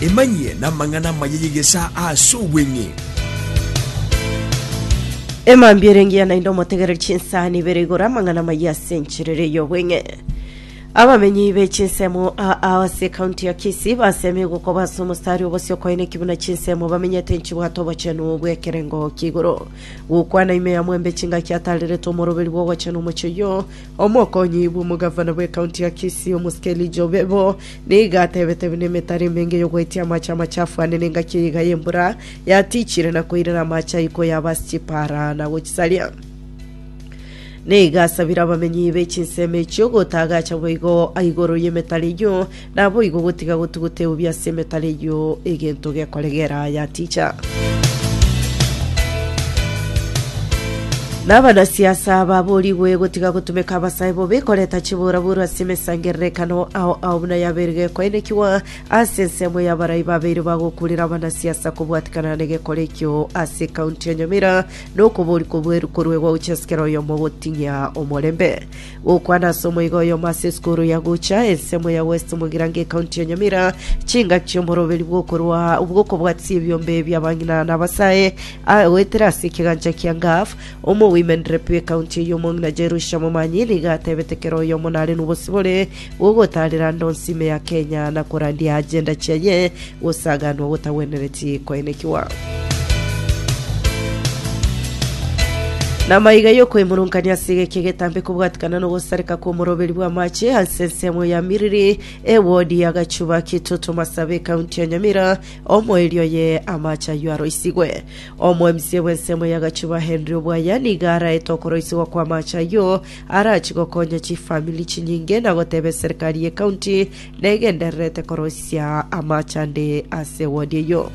Emanyie namang'ana amaya y'egesaa ase obweng'e. Emambia ere engiya naende omotegereri chinsani ibere igoro amang'ana amaya ase enchera ere y'obweng'e. Abamenyi be chinsemo aa ase ekaunti ya Kisii basemire gokoba ase omosari obosio koina ekibuna chinsemo bamenyete nchibwate obochenu bw'ekerengo ki'igoro. Gokwana ime ya Mwembe chingaki ataarerete omoroberi bw'ogochenu omochie oyio Omokonyi bw'omogavana bw'ekaunti ya Kisii, omosike Elijah Obebo, nigo atebete buna emetaro emenge y'ogoetia amache amachafu ane n'engaki ey'eiga y'embura yatichire na koirera amache ayio koyaba ase chipaara na gochisaria. Nigo asabire abamenyi be chinsemo echio gotagacha boigo igoro y'emetaro eyio Naboigo gotiga gotuguteubia ase emetara eyio egento gekoregera aya ticha. Nabana siasa baborigwe gotiga gotumeka abasae bobe koreta chiburaburu ase emesangererekano ao ao buna yabeire gekoenekigwa ase ensemo ya barai babeire bagokurera abana siasa kobwatikana negekora ekio ase county ya Nyamira nokoborikwa bweruko rwegwa gochia sikera oyomo gotinyia omorembe. Gokwana ase omoiga oyomo ase esukuru ya gocha ensemo ya West Mugirango ekaunti ya Nyamira, chingaki chi'omoroberi bw'okorwa bw'okobwatisia ebiombe bia bang'ina na abasae a- goetera ase ekegancha kia Ngaf, omo women rep ekaunti eye omong'ina Jerusha Momanyi nigo atebete kera oyomo nare nobosibore Gogotaarera ndonsime ya Kenya na korandia agenda chiaye gosaganwa gotagwenereti koenekigwa. Namaiga y'okoimorunkania ase egeki egetambe kobwatikana nogosareka kw'omoroberi bw'amache ase ensemo ya Miriri, ewodi ya Gachuba, Kitoto, Masabe, County ya Nyamira, omoerio oye amache ayio aroisigwe. Omoemisia bw'ensemo ya Gachuba Henry Obwaya nigo araete okoroisigwa kw'amache ayio Arachie gokonya chifamiri chinyinge na goteba eserikari y'ecounty negendererete koroisia amaache ande ase ewodi eyio.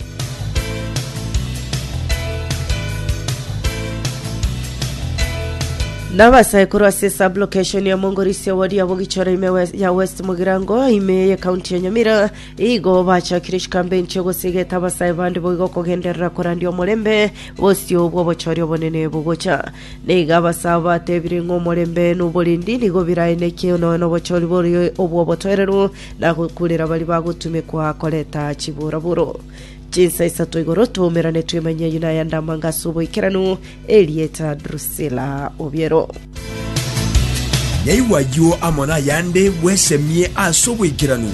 Nabasaikuru ase sublocation ya Mongorisi ewodi ya Bogichoro ime wes- ya West Mugirango ime ye county ya Nyamira igo bachakire chikambeini chia gosigeta abasae bande boigo kogenderera korandia omorembe bosio bw'obochori obonene bogocha Na igo abasaabo batebire ng'a omorembe noborendi nigo biraeneke nonya nobochori boria obw'obotoereru, na gokuurera baria bagotumekwa korenta chiburaburo. Chinsa isato igoro twaumerane twemanye ayio nayande amanga ase oboikeranu, erieta Drusila obiero. Naigwa ayio amo nayande bwesemie ase oboikeranu.